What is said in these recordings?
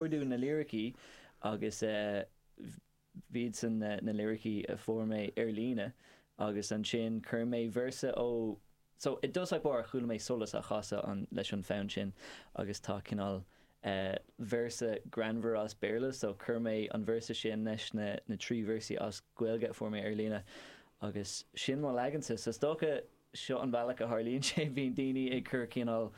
Chuardaigh na liricí agus b'iadsan na liricí a fuair mé ar líne agus ansin chuir mé véarsa ó So, i dtosach báire chuala mé Solas á chasadh leis an fonn sin agus tá cineál véarsa greannmhar as Béarla so chuir mé an véarsa sin leis na trí véarsaí as Gaeilge a fuair mé ar líne agus sin mo leagansa so is dócha seo an bealach a tharlaíonn sé bíonn daoine ag cur cineál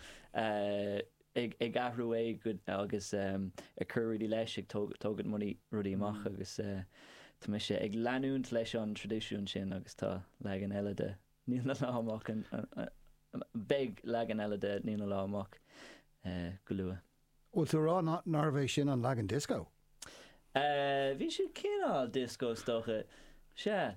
ag athrú é agus ag cur rudaí leis, ag tóg tógaint rudaí rudaí amach agus tá mise ag leanúint leis an traidisiún sin agus tá leagan eile de Níl na Lá amach an an beidh leagan eile de Níl na Lá amach go luath. Bhfuil tú a rá ná nárbh é sin an leagan dioscó? Eh, bhí sé cineál dioscó is dócha. Sea.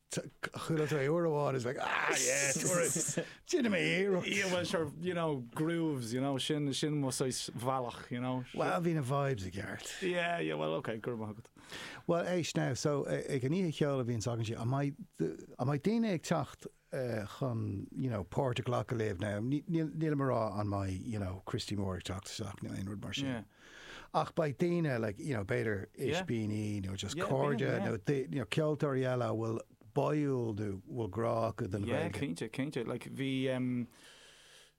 Chuala tú é uair amháin 's like ah yeah déanfaidh mé iarracht. Yeah well sure you know grooves you know sin sin mo saghas bhealach you know. Well bhí na vibes i gceart. Yeah yeah well ok go raibh maith agat. Well éist now so ag an oíche cheoil a bhíonns againn sé an mbeidh daoine ag teacht chun you know páirt a ghlacadh libh now nílim ag rá an mbeidh you know Christy Moore ag teacht isteach nó aon rud mar sin. Ach beidh daoine eile, you know, b'fhéidir Ispíní nó just cairde nó you know ceoltóirí eile a bhfuil báúil nó bhfuil grá acu don Ghaeilge. Yeah, cinnte, cinnte. Like, bhí ehm,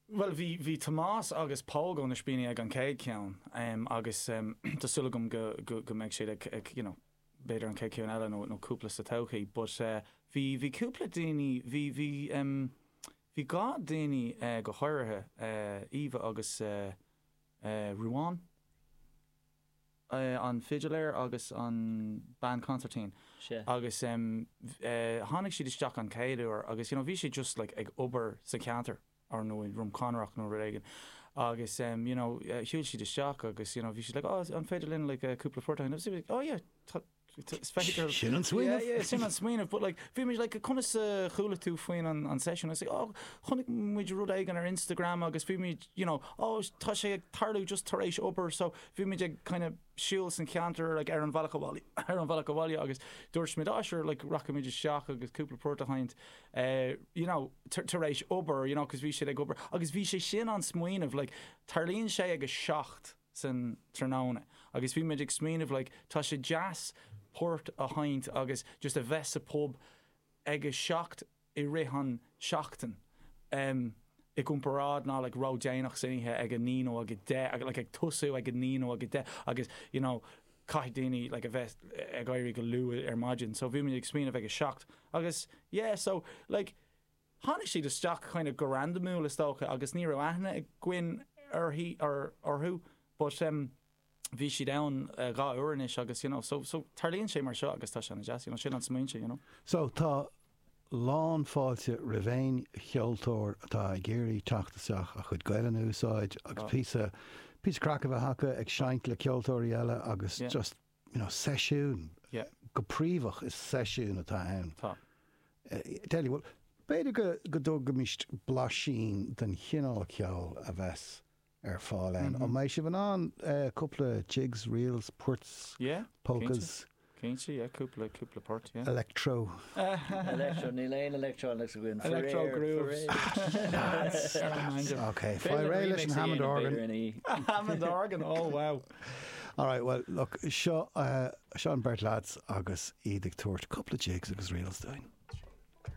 bhuel, bhí, bhí Tomás agus Pádraig ó na Ispíní ag an chéad cheann ehm agus ehm tá súil agam go, go, go mbeidh siad ag, ag, you know, b'fhéidir an chéad cheann eile nó, nó cúpla sa todhchaí but eh bhí, bhí cúpla daoine, bhí, bhí ehm, bhí dhá daoine eh go háirithe eh Eva agus eh, Ruán, an fidiléir agus an bean consairtín agus tháinig siad isteach an chéad uair agus you know bhí siad just like ag obair sa cheantar or nó i nDroim Conrach nó rud éigin agus you know shiúil siad isteach agus you know bhí siad like oh an féidir linn like cúpla port agus oh yeah tá Sin an smaoineamh? Yeah, sin an smaoineamh, but like, bhí muid like, conas a chuala tú faoin an, an session? Is oh, chonaic muid rud éigin ar Instagram agus bhí muid, you know, oh, tá sé ag tarlú just tar éis obair, so bhí muid ag kind of siúl san ceantar like, ar an bhealach abhaile, ar an bhealach abhaile agus dúirt muid, oh, sure, like, racha muid isteach agus cúpla port a sheinnt, uh, eh, you know, tar éis obair, you know, cos bhí siad ag obair, agus bhí sé sin an smaoineamh, like, tarlaíonn sé ag a seacht, san tráthnóna agus bhí muid ag smaoineamh like tá sé deas port a sheinnt agus just a bheith sa pub ag a seacht i rith an seachtain em i gcomparáid ná like ró déanach san oíche ag a naoi nó ag a deich like ag tosú ag a naoi nó ag a deich agus you know caithfidh daoine like a bheith ag éirí go luath ar maidin so bhí muid ag smaoineamh ag a seacht agus yeah so like Tháinig siad isteach kind of go randamúil is dócha agus ní raibh aithne againn uirthi, or orthu but em bhí siad ann dhá uair anois agus you know so, so tarlaíonn sé mar seo agus tá sé ana deas, you know sin an smaoineamh you know. So tá lán fáilte roimh aon cheoltóir atá ag iarraidh teacht isteach a chuid Gaelainn a úsáid agus píosa, píosa craic a bheith acu ag seinnt le ceoltóirí eile agus just, you know, seisiún, go príomhach is seisiún atá ann. Tá. Delia, bhuel, b'fhéidir go dtabharfaimis blaisín den chineál ceoil a bheas ar fáil ann. An mbeidh sibh in ann cúpla jigs, reels, poirts, polkas? Cinnte, yeah, cúpla, cúpla port, yeah. Electro. Electro, níl aon electronics againn. Electro grooves. That's, that's, ok, faigh réidh leis an Hammond organ. Hammond organ, oh wow. All right, bhuel, look, seo, seo an beirt lads agus iad ag tabhairt cúpla jigs agus reels dúinn.